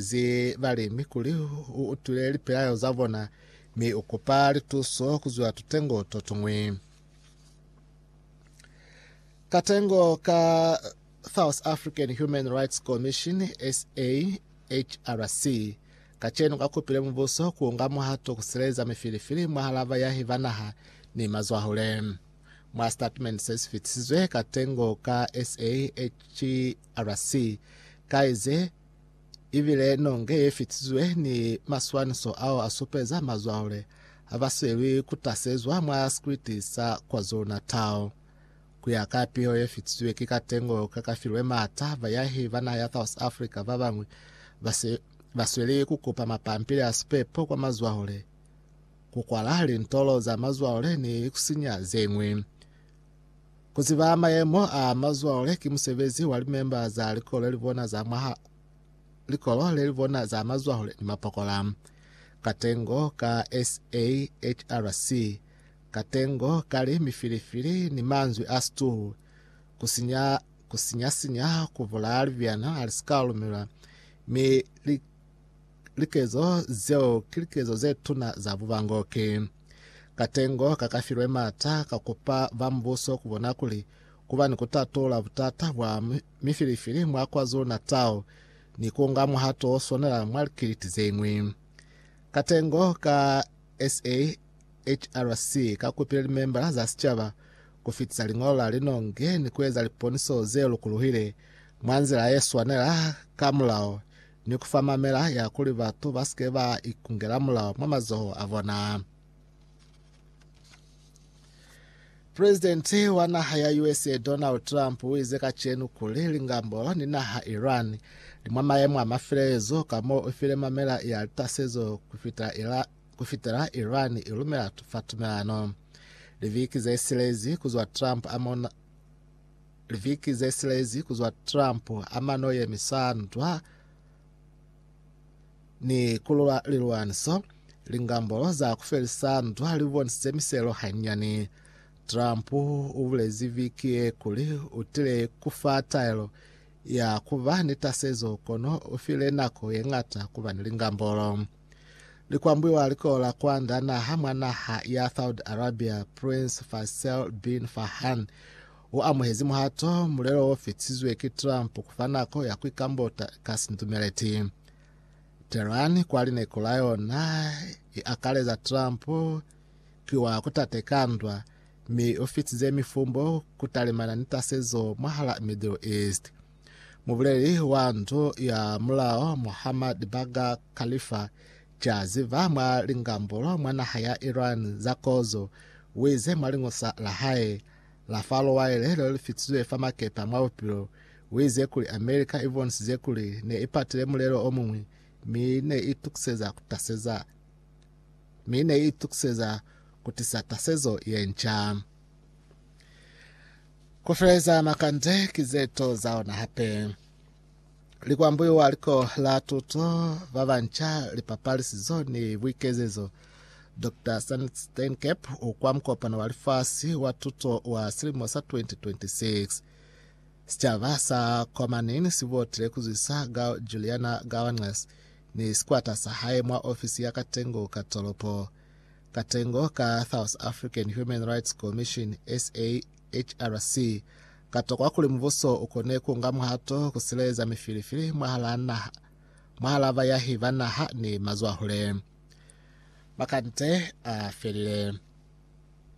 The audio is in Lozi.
Ze balemi kuli u utwile lipelaelo za bona, mi u kupa lituso ku zwa tutengo to tuñwi. Katengo ka South African Human Rights Commission, SAHRC, kacenu ka kupile mubuso ku nga muhato ku sileleza mifilifili mwahal'a bayahi ba naha ni mazwahule. Mwa sitatimende se si fitisizwe, katengo ka SAHRC ka ize, ibile nonge ye fitizwe ni maswaniso ao a supeza mazwahule ha ba swelwi ku tasezwa mwa sikriti sa KwaZulu-Natal. Ku ya ka piho ye fitizwe ki katengo ka ka filwe m'ata, bayahi ba naha ya South Africa ba bañwi ba se ba sweli ku kupa mapampili a sipepo kwa mazwahule, ku kwala lintolo za mazwahule ni ku sinya ze ñwi. Ku ziba mayemo a mazwale ki musebezi wa limemba za likolo le li bona za mwaha likolo le li bona za mazwale ni mapokola. Katengo ka SAHRC Katengo ka li mifilifili ni manzwi a stool ku sinya ku sinya sinya ku bulaya libyana a li si ka lumelwa mi li Likezo zeo ki likezo ze tuna za bubangoki. Katengo ka ka filwe m'ata ka kupa ba mubuso ku bona kuli ku ba ni ku tatula butata bwa mifilifili mwa KwaZulu-Natal ni ku nga muhato o swanela mwa likiliti ze ñwi. Katengo ka SAHRC ka kupile limembala za sicaba ku fitisa liñolo la linongi ni ku eza liponiso ze lukuluhile mwa nzila ye swanela ka mulao ni ku fa mamela ya kuli batu ba si ke ba ikungela mulao mwa mazoho a bona. Presidenti wa naha ya USA Donald Trump u ize kacenu kuli lingambo ni naha Iran li mwa mayemo a mafilezo ka mo u file mamela ya litasezo ku fitela Iran i lumela fa tumelano. Liviki ze silezi ku zwa Trump a mona Liviki zesilezi kuzwa Trump amano yemisandwa ni kulula lilwaniso, lingambolo za kufelisa ndwa libonisize miselo hanyani. Trump ubulezi viki ye kuli utile kufa taelo ya kuba ni tasezo kono ufile nako yengata kuba ni lingambolo. Likwambuiwa likola kwanda naha mwa naha ya Saudi Arabia, Prince Faisal bin Farhan o amuhezi muhato mulelo o fitizwe ki Trump kufa nako ya kuikambota ka sindumeleti. Tehran kwa lineko la yona i akaleza Trump ki wa kutate ka ndwa, mi o fitize mifumbo kutalimana ni tasezo mwahala Middle East. Mubuleli wa ndu ya mulao Muhammad Baga Khalifa Jaziva mwa lingambulo mwa naha ya Iran za kozo wize mwa liñosa la hae la fa lowaile leo lifitizwe fa makepa mwa bupilo wize kuli America ibonisize kuli ne ipatile mulelo omuñwi mi ne itukiseza kutaseza mi ne itukiseza kutisa tasezo yenca. Ku feleza makande ki ze to za ona hape. Likwambuyo wa liko la tuto ba banca, lipapalisizo ni buikezezo, Dr. Stan Steinkep u kwa mukopano wa lifasi wa tuto wa silimo sa 2026. Sicaba sa kwa Manin si botile ku zwisa Gao Juliana Gawangas ni sikwata sa hae mwa ofisi ya Katengo ka tolopo. Katengo ka South African Human Rights Commission, SAHRC, katokwa kuli mubuso ukone kuunga muhato kusileleza mifilifili mwahalaa naha, mwahalaa bayahi ba naha ni mazwahule. Makande afelile.